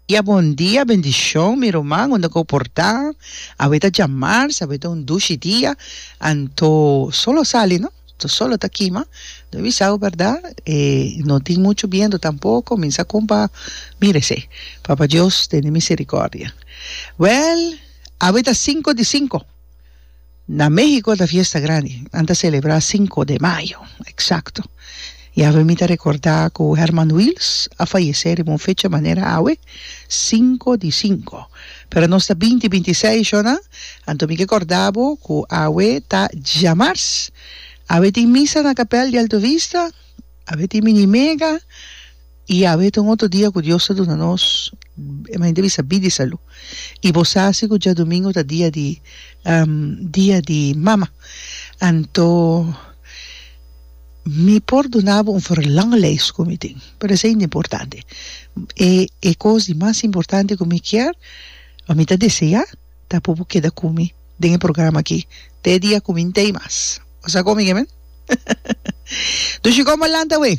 Dia bon dia bendishon mi ruman unda ku por ta awe ta dja mars awe ta un dushi dia anto solo a sali no to solo a ta kima no bisaw berdad e no tin muchu bientu tampoko mi sa kon pa mira esei papa dios tene misericordia wèl awe ta sinku di sinku Na Mexico ta fiesta grandi, nan ta celebra cinco de mayo exacto, y awe mi ta recorda cu Herman Wils a fayece riba un fecha manera awe, cinco di cinco, pero nos ta binti binti seis sho nan, anto mi ke corda bo cu awe ta djamars, awe tin misa na capel di Alto Vista, awe tin mini mega, I awe ta un otro dia ku Dios ta duna nos mente bisa bidi salu. I bo sa si ku djadumingu ta dia di dia di mama. Anto mi por duna bo un verlanglijst ku mi tin, pero esei no ta importante. E e kos di mas importante ku mi kier, ku mi ta desea, ta por bo keda ku mi den e programa aki te e dia ku mi no ta ei mas. Bo sa kon mi ke men? Dushi kon bo lanta awe?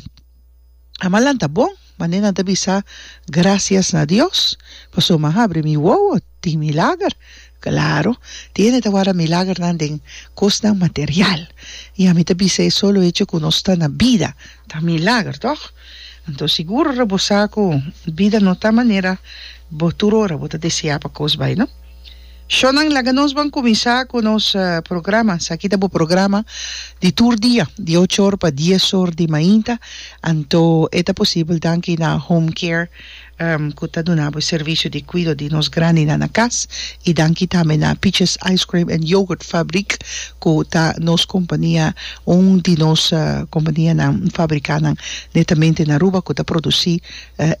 Ama nan ta bon, mane nan ta bisa grasias na Dios pasobra mi a habri mi wowo tin milager. Claro, tin hende ta warda milagernan den cosnan material y ami ta bisa e solo hecho cu nos ta na bida ta milager, toch? Anto seguro ta bo sa cu bida no ta manera bo tur ora bo ta desea pa cos bay, no? Shownan laga nos ban kuminsá ku nos programa. Esaki ta bo programa di tur dia, di ocho or pa dies or di mainta, anto e ta posibel danki na Home Care ku ta duna bo e servisio di kuido di nos grandinan na kas, i danki tambe na Peaches Ice Cream and Yogurt Fabriek ku ta nos kompania, un di nos kompanianan fabrikánan netamente na Aruba ku ta produsí.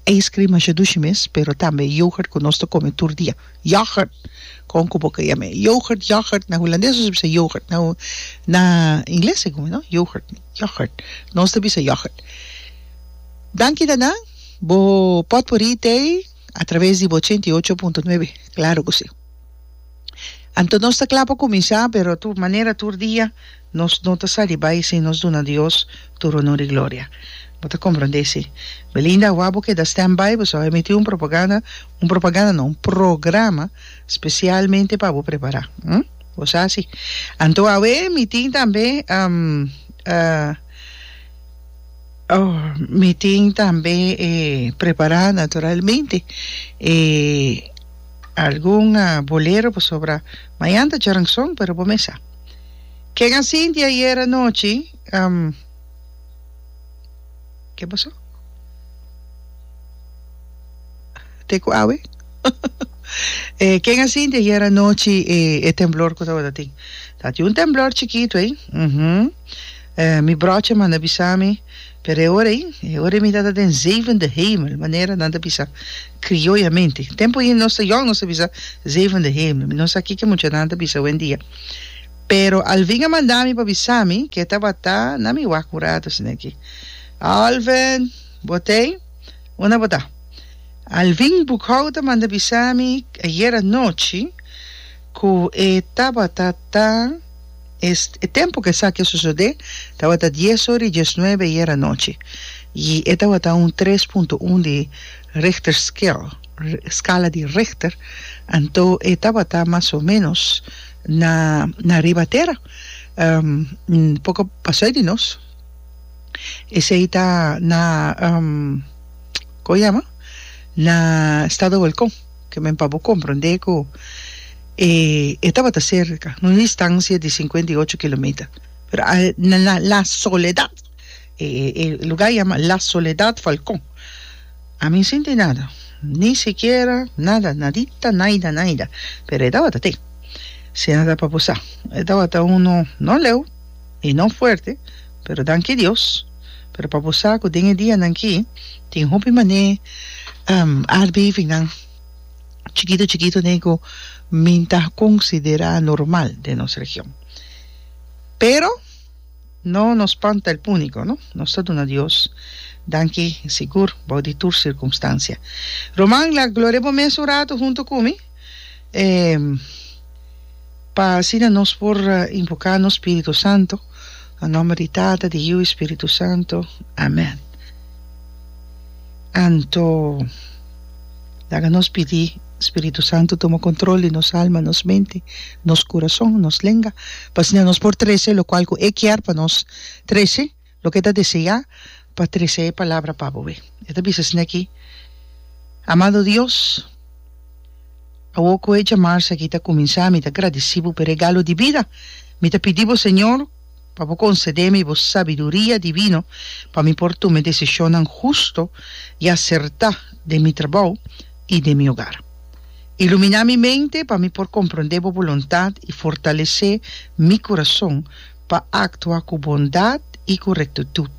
Ice cream masha dushi mes, pero tambe yoghurt cu nos ta come tur dia. Yoghurt! Con cu bo ka yama e yoghurt, yoghurt? Na hulandes nos ta bisa yoghurt. Na na ingles e gumi, no? Yoghurt, yoghurt. Nos ta bisa yoghurt. Danki ta nan. Bo potpourri ta ei a traves di bo ochenta i ocho punto nuebe. Claro cu si. Anto nos ta cla pa cuminsa, pero tur manera tur dia. Nos no ta sali bai sin nos duna Dios tur onor i gloria. Bo ta komprondé, si? Belinda, awor bo keda standby, bo staba emití un propaganda, un propaganda no, un programa spesialmente pa bo prepará. Hm? Bo sa si. Anto awe mi tin tambe, oh, mi tin tambe e prepará naturalmente e algun bolero pasobra mañan ta Jaranson, pero bo mes sa. Ken a sinti ayer anochi Ke pasó? Te ku awe? Ken a sinti ayer anochi e temblor ku tabatatin? Tabati un temblor chikitu ey. Mi brochi a manda bisa mi. Pero e ora ei, e ora ei mi ta ta den zevende hemel, manera nan ta bisa krioyamente. Tempu ei nos ta yòn, nos ta bisa zevende hemel. Mi no sa kiko muchanan ta bisa owendia. Pero Alvin a manda mi pa bisa mi ku e tabata na mi wak un ratu asina aki. Alvin, bo tei? Un a bota. Alvin Bukau ta manda bisa mi ayer anochi ku e tabata ta. E tempu ku esaki a sosodé tabata dies ora i diesnuebe i era anochi, i e tabata un tres punto un di Richter scale, skala di Richter, anto e tabata mas o ménos na na riba tera, un poko pasoi di nos. Esei ta na, kon yama? Na Estado Volkon. Ke men pa bo komprondé ku e e tabata serka, un distansia di sinkuenta i ocho kilometer. Pero a na la la soledad, e e e lugá yama la soledad falkon. A mi sinti nada, ni sikiera nada, nadita, naida, naida. Pero e tabata te. Si a ta pa bo sa, e tabata unu no leu i no fuerte, pero danki Dios. Pero pa bo sa cu den e dianan aki tin hopi manera aardbevingan chikito chikito nei cu mi ta considera normal den nos region. Pero no nos spanta el punico, no. Nos ta duna Dios danki sigur bou di tur circunstancia. Roman, la gloria bo mes un rato hunto cu mi. pa asina nos por invoká nos Spiritu Santu. Na nòmber di Tata, di Yiu i Spiritu Santu. Amèn. Anto, laga nos pidi Spiritu Santu tuma kontrol di nos alma, nos mente, nos kurason, nos lenga, pa asina nos por trese lokual ku e kier pa nos trese. Loke ta desea pa trese e palabra pa bo e. E ta bisa esne aki, Amado Dios, awo ku e jamarsa aki ta kuminsá mi ta gradisí bo pa e regalo di bida. Mi ta pidi bo Señor pa bo konsede mi bo sabiduria divino pa mi por tuma e desishonnan husto i asertá den mi trabou i den mi hogar. Iluminá mi mente pa mi por komprondé bo boluntat i fortalesé mi kurason pa actua cu bondad y cu rectitud.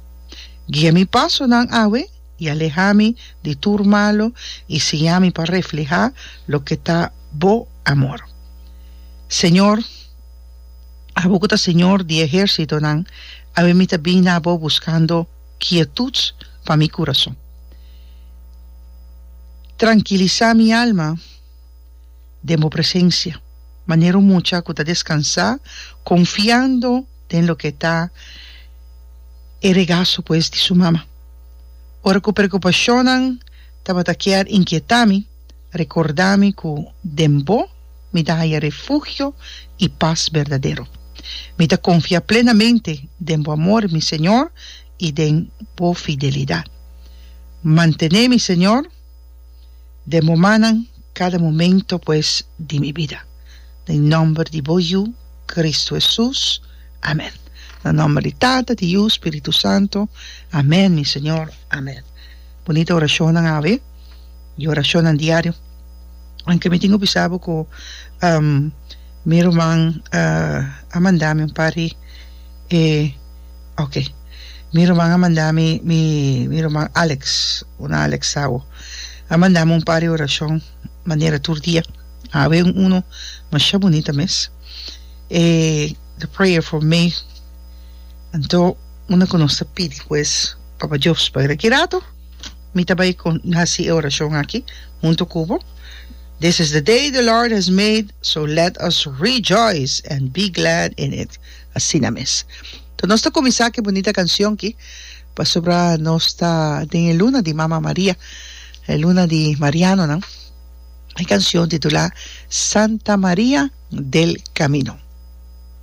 Guia mi pasonan awe y aleha mi di tur malo y siña mi pa refleha loke ta Bo amor. Señor, abo cu ta Señor di ehercitonan, awe mi ta bin na Abo buscando quietud pa mi curazon. Trankilisa mi alma. den bo presensia, manera un mucha ku ta deskansá konfiando den loke ta e regaso pues di su mama. Ora ku prekupashonnan tabata kier inkietá mi, rekordá mi ku den bo mi ta haya refugio i pas berdadero. Mi ta konfia plenamente den bo amor, mi Señor, i den bo fidelidat. Mantené mi, Señor. den momannan kada momento pues di mi bida den nomber di bo yu Cristo Hesus amen na nomber di tata di yu spiritu santo amen mi señor amen bunita orashonnan awe y orashonnan diario aunke mi tin ku bisa bo ku mi ruman a manda mi un par di e Ok. Mi ruman a manda mi, mi, mi ruman Alex, una Alex Sawo, a manda mi un par di orashon manera tur dia. A habi un uno masha bunita mes, e The Prayer for May. Anto, una ku nos ta pidi ku es Papa Jobs pasobra ki rato mi ta bai kon, hasi e orashon aki huntu ku bo, This is the day the Lord has made, so let us rejoice and be glad in it. Asina mes. Toh nos ta kuminsá ku e bunita kanshon ki pasobra nos ta den e luna di Mama Maria, e luna di marianonan. E kanshon titulá Santa Maria del Camino.